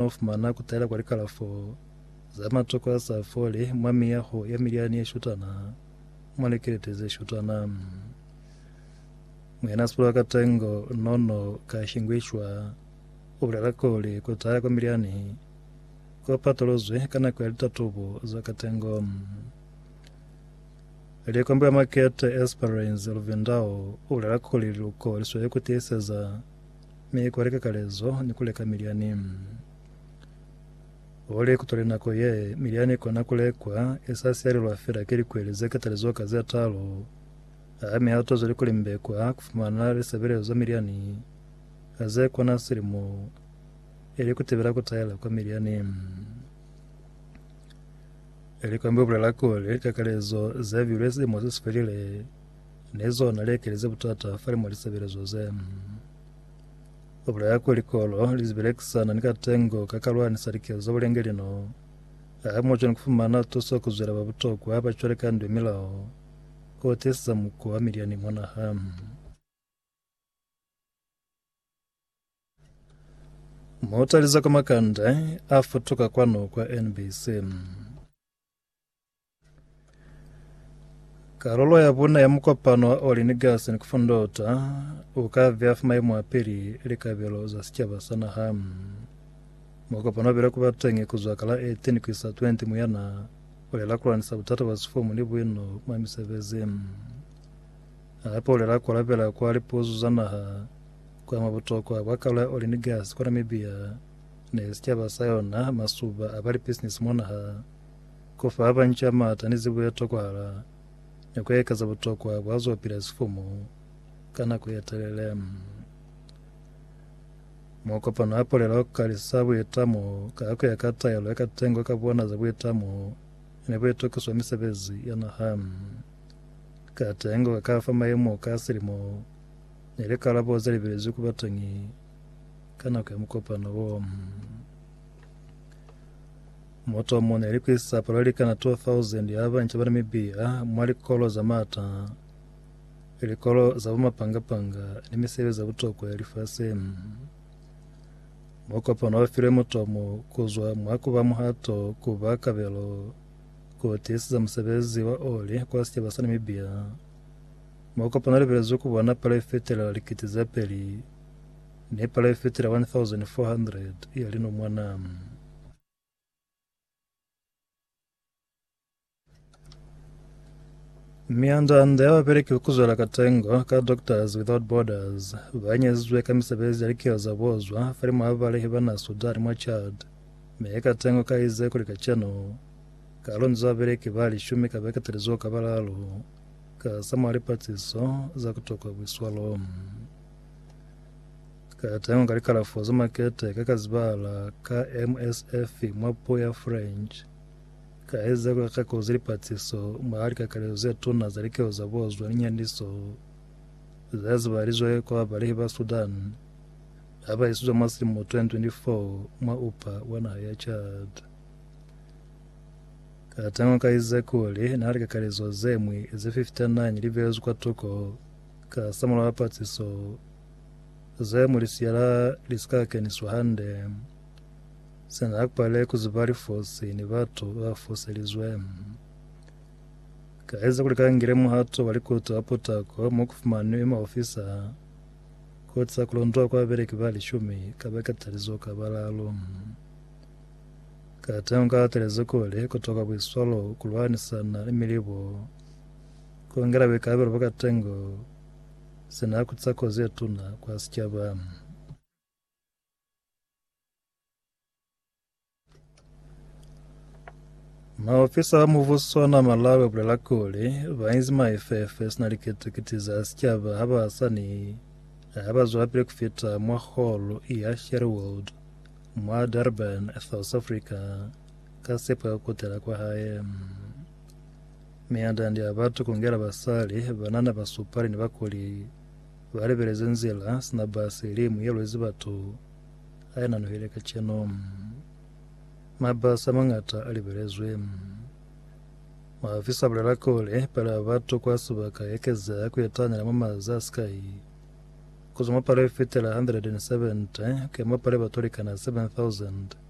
Mwa fumana kutala kwa likalafo za matoko a sa foli mwa miyaho ya milyani ye shutana, mwa likelete ze shutana. Muyana Sipulwa ka Tengo no no ka shingwishwa u bulela kuli kutala kwa milyani ku patuluzwi ka nako ya litatubo za ka tengo. Likombi wa makete Esperance Luvindao u bulela kuli liluko li sweli ku tiiseza Mi ku leka kalezo ni ku leka milyani. Oli ku tole nako ye milyani ikona ku lekwa, i sa siyalelwa fela ki likweli ze katalizo ka ze talu. A mi ha to zweli ku limbekwa ku fumana lisebelezo za milyani a ze kona silimo, ili ku tibela ku taela kwa milyani. Likambi u bulela kuli, likakalezo ze bilwe silimo se si felile. Ne zona lekeli ze butata fale mwa lisebelezo ze. Ku bulaya kuli kolo li zibelekisana ni katengo ka ka lwanisa likezo za bulenge lino, ha mu cwani ku fumana tuso ku zwela ba butokwa ba cwale ka ndwe milao o tiisisa muko wa milyani mwa naha. Mutalize kwa makande a futuka kwanu kwa NBC. Karolo ya buna ya mukopano wa Oli ni Gasi ni kufundota u ka vya fa maimo a pili likabelo za sicaba sa naha. Mukopano bile kuba teñi kuzwa ka la 18 kuisa 20 Muyana ulela kulanisa butata bwa sifumu ni buino mwa misebezi. Hape ulela kualabela kwa lipuzu za naha kwa mwa butokwa bwa karolo ya Oli ni Gasi kwa Namibia ne sicaba sa yona masuba a ba lipisinisi mwa naha, ku fa ba banca maata ni zibo ye tokwahala, ni ku ekeza butokwa bwa z'o pila sifumu ka nako ye telele. Mo kopano a polela ku kalisa buitamo ka ku ya ka taelo ya katengo ka bona za buitamo ni buitokiso bwa misebezi ya naha. Katengo ka fa maemo ka silimo ni likalabo ze libelezwi ku bateñi Ka nako ya mukopano wo, moto wa mona ilikwisa palo likana 2000 ya banca ba Namibia mwa likolo za mata, likolo za bumapangapanga ni misebezi ya butokwa ya lifasi. Mukopano wa file mutomo kuzwa mwa kuba muhato kuba kabelo ku tiisiza musebezi wa oli kwa sicaba sa Namibia. Mukopano libelezwe ku bona palo ifetelela likiti ze peli Ni palo ifitile 1,400 ya linomwana. Mianda-anda ya bapeleki ba kuzwela katengo ka Doctors Without Borders ba nyezizwe ka misebezi ya likilo za bozwa falimwa ha balehi ba na Sudan mwa Chad, mi katengo ka ize kuli kacenu ka lonzwa bapeleki ba lishumi ka beke teli zuho ka balalu, ka sa mwa lipatiso za kutokwa bwiswalo. Ka tengwa ka likalafo za makete ka ka zibahala ka MSF mwa puo ya French, ka eza ka kako ze lipatsiso mwa likakalezo ze tuna za likeho za bozwa ni nyandiso za zibalizwe kwa babalehi ba Sudan ha ba isizwa mwa silimo 2024 mwa upa wa naha ya Chad. Ka tengwa ka ize kuli na likakalezo ze ñwi ze 59 li beezwi kwa tuko Kasamulaho wa patsiso, ze mu lisiyala li si ka keniswa hande. Sina ha ku pale ku ziba lifosi ni batu ba ba foselizwe. Ka eza kuli ka ngile muhato wa likuto wa putako mo ku fumanwi maofisa, koti za ku londola kwa babeleki ba lishumi ka ba katalizo ka balalo. Kateñi u ka atelezi kuli ku toka buiswalo ku lwanisana ni milibo. Ku ngela buikalabelo bwa katengo se n'a kutisa kozi ye tuna kwa sicaba. Maofisa ba mubuso ona Malawi ba bulela kuli, ba inzi maifefe sina likiti-kiti za sicaba ha ba sa ni ha ba zwelapili ku fita mwa holo ya Sherwood mwa Durban, South Africa, ka sepo ya ku kutela kwa hae. Miandandi ya batu kungela basali banana basupali ni bakuli balibeleze nzila sina basi limu yelwezi batu ainanuhile kacenu. Mabasi amangata alibelezwe. Maofisa abulela kuli palo ya batu kwa sibaka yaekezeha kuetanyela mwa maza asikai, kuzwa mwa palo yefitela 170 kuya mwa palo ya batu alikana 7,000.